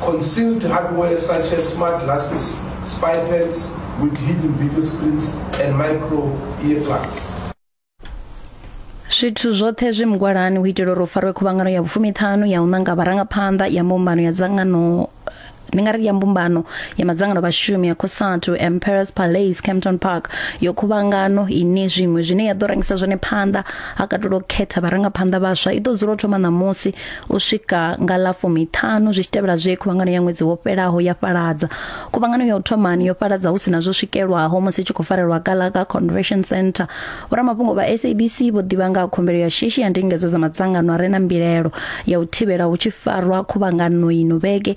concealed hardware such as smart glasses, spy pads with hidden video screens and micro earplugs. zwithu zwoṱhe zwi mugwalani u itela uri u farwe khuvhangano ya vhufumiṱhanu ya u ṋanga vharangaphanḓa ya mbumbano ya dzangano ndi nga ri ya mbumbano ya madzangano vhashumi ya cosatu emperors palace campton park yo khuvhangano ine zwiṅwe zwine ya ḓo rangisa zwone phanḓa ha katelwa u khetha vharangaphanḓa vhaswa i ḓo dzula u thoma ṋamusi U swika nga ḽa fumiṱhanu zwi tshi tevhela zwe khuvhangano ya ṅwedzi wo fhelaho ya fhaladza. Khuvhangano ya u thomani yo fhaladza hu sina zwo swikelwaho musi tshi khou farelwa Gallagher Convention Centre. Vhoramafhungo vha SABC vho ḓivha nga khumbelo ya shishi ya ndingedzo dza madzangano a re na mbilelo ya u thivhela hu tshi farwa khuvhangano ino vhege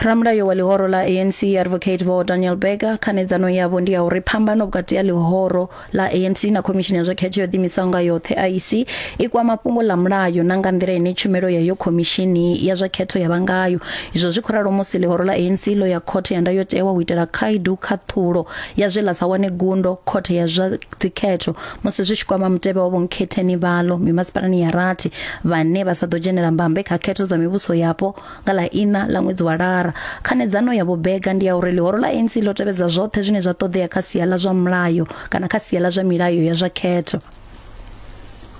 ramulayo wa ḽihoro ḽa anc advocate vho daniel berger khanedzano yavho ndi ya uri phambano vhukati ha ḽihoro ḽa anc na khomishini ya zwa khetho yo ḓimisaho nga yoṱhe iec i kwama fhungo ḽa mulayo na nga nḓila ine tshumelo ya yo khomishini ya zwa khetho ya vha ngayo izwo zwi khou ralo musi ḽihoro ḽa anc ḽo ya khothe ya ndayotewa u itela khaedu khaṱhulo ya zwe ḽa sa wane gundo khothe ya zwa dzikhetho musi zwi tshi kwama mutevhe wa vhonkhetheni vhalo mimasipalani ya rathi vhane vha sa ḓo dzhenela mbambe kha khetho dza mivhuso yapo nga ḽa ina ḽa ṅwedzi wa lara khanedzano ya vhobega ndi ya uri ḽihoro ḽa ANC ḽo tevhedza zwoṱhe zwine zwa ṱoḓea kha sia ḽa zwa mulayo kana kha sia ḽa zwa milayo ya zwa khetho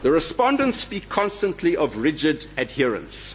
The respondents speak constantly of rigid adherence.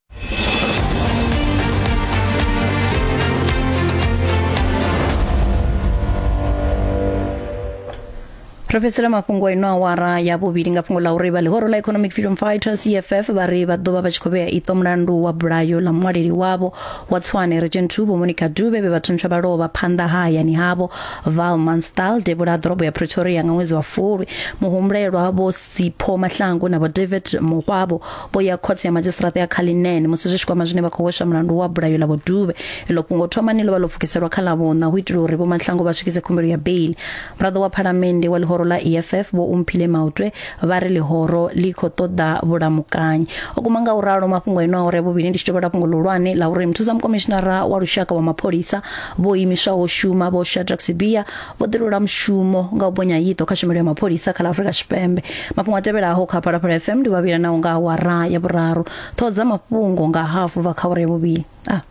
ro fhedzisela mafhungo a ino awara ya vhuvhili nga fhungo ḽa uri vha ḽihoro ḽa economic freedom fighters eff vha ri vha ḓo vha vha tshi khou vhea iṱo mulandu wa bulayo ḽa muṅwaleli wavho wa tswane regent vho monica dube vhe vha thuntsha vha lovha phanḓa ha hayani havho val manstal devhula ḓorobo ya pretoria nga ṅwedzi wa fulwi muhumbulelwa vho sipho mahlangu na vho david muhwavho vho ya khothe ya madzhisiṱiraṱa ya Cullinan musi zwi tshi kwama zwine vha khou hweswa mulandu wa bulayo ḽa vhoduvhe iḽo fhungo thomani ḽo vha ḽo pfukiselwa kha ḽavhuṋa hu itela uri vhomatlhango vha swikise khumbelo ya beili muraḓo wa phalamennde wa ḽihoro ḽa eff vho umphile mautwe vha ri ḽihoro ḽi khou ṱoḓa vhulamukanyi o kuma nga u ralo mafhungo eno a uri vhuvhili ndi tshi tovhela fhungo ḽihulwane ḽa uri muthusamukomishinara wa lushaka wa mapholisa vho imiswaho shuma vho shadrack sibia vho ḓirula mushumo nga u bonya yiḓo kha tshumelo ya mapholisa kha ḽa afurika tshipembe mafhungo a tevhelaho kha phalaphala fm ndi vhavhila naho nga awara ya vhuraru ṱhoho dza mafhungo nga hafu bva kha awara ya vhuvhili ah.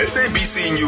SABC News.